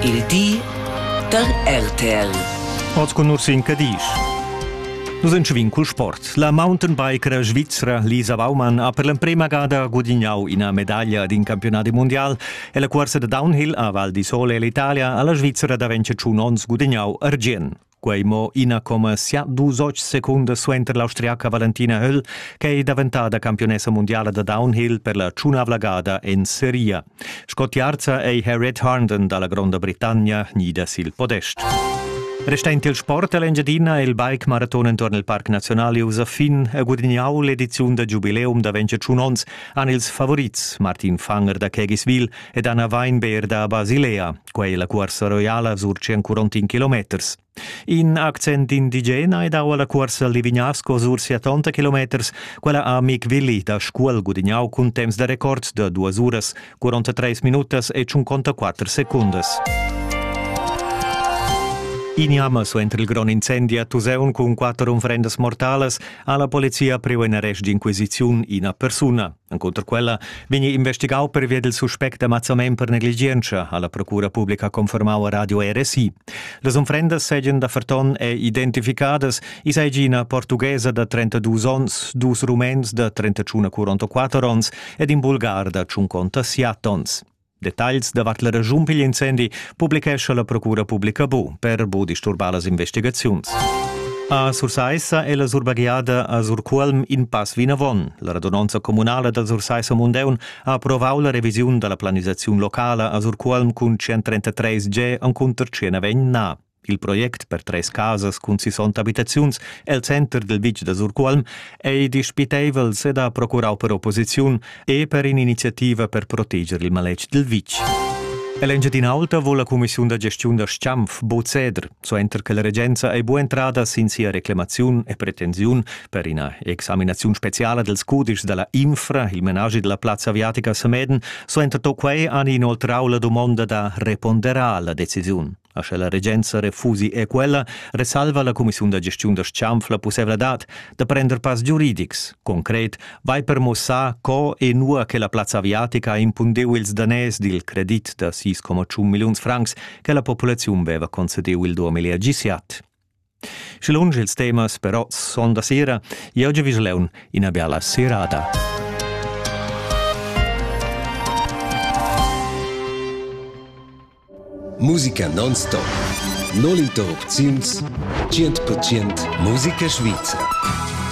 Il di da RTL. Oz cun Ursin Cadisch. Nus entschevin cul sport. La mountainbiker svizra Lisa Baumann ha per l'emprema gada gudignau ina medaglia d'in campiunadi mundial e la cuorsa da downhill a Val di Sole ell'Italia alla Svizzera da 25 onns gudignau argient. Quei mo ina coma sia dus oc secundas suenter l'austriaca Valentina Höll che ei daventada campionessa mundiala da downhill per la tschunavla gada en seria. Sco tiarza ei Harriet Harnden dalla Gronda Britannia nida sil podest. Restend il sport all'Engiadina e il bike maraton entorn il Parc Nazionale usa fin e gudignau l'ediziun da giubileum da 25 onns han ils favorits Martin Fanger da Kegiswil ed Anna Weinbeer da Basilea. Quei la cuorsa roiala surci ancuront in kilometers. In accent indigena è dau alla cuorsa Livignasco sur 70 kilometers, quella a Mick Willi da Scuol gudignau cun temps da record de 2 uras, 43 minutas e 54 secundas. Ignama so entri il gron incendi a Tuseun cun quatter unfrendas mortalas ha la polizia priu in arrest d'inquisiziun ina persuna. Encunter quella vegni investigau pervia dil suspect d'ammazzament per negligientscha, ha la procura publica confermau a Radio RSI. Las unfrendas seigien da Ferton è identificadas, i seigi ina portughesa da 32 onns, dus rumens da 31 44 onns ed in bulgar da 50 siat onns. Detagls davart la regiun pigl incendi publichescha la Procura Publica Bu per bu disturbar las investigaziuns. A Sursaissa è la surbagliada a Surcuolm in pass vinavon. La radunonza communala da Sursaissa Mundeun ha approvau la revisiun dalla planisaziun locala a Surcuolm cun 133 G encunter 109 na. Il project per treis casas cun sisonta abitaziuns el center dil vitg da Surcuolm ei dispiteivels ed ha procurau per opposiziun e per in'iniziativa per proteger il maletg dil vitg. Ell'Engiadin'Alta vuol la cumissiun da gestiun da Stampf bod ceder, suenter che la regenza ei bu entrada sin sia reclamaziun e pretensiun per ina examinaziun speciala dels cudischs dalla Infra, il menage della plazza aviatica Sameden, suenter to quei han inoltrau la domanda da repondera alla decisiun. A sche la regenza refusi è quella, resalva la cumissiun da gestiun da Schanf la pussevladad da prender pass giuridics. Concret vai per mussar co e nua che la plazza aviatica ha impundeu ils danès dil credit da 6,1 milliuns francs che la populaziun veva concediu il 2017. Sche lunsch ils temas però son da sera, jeu giu vis leun ina biala serada. Musica non-stop. Non interrupziuns 100% Musica Svizzera.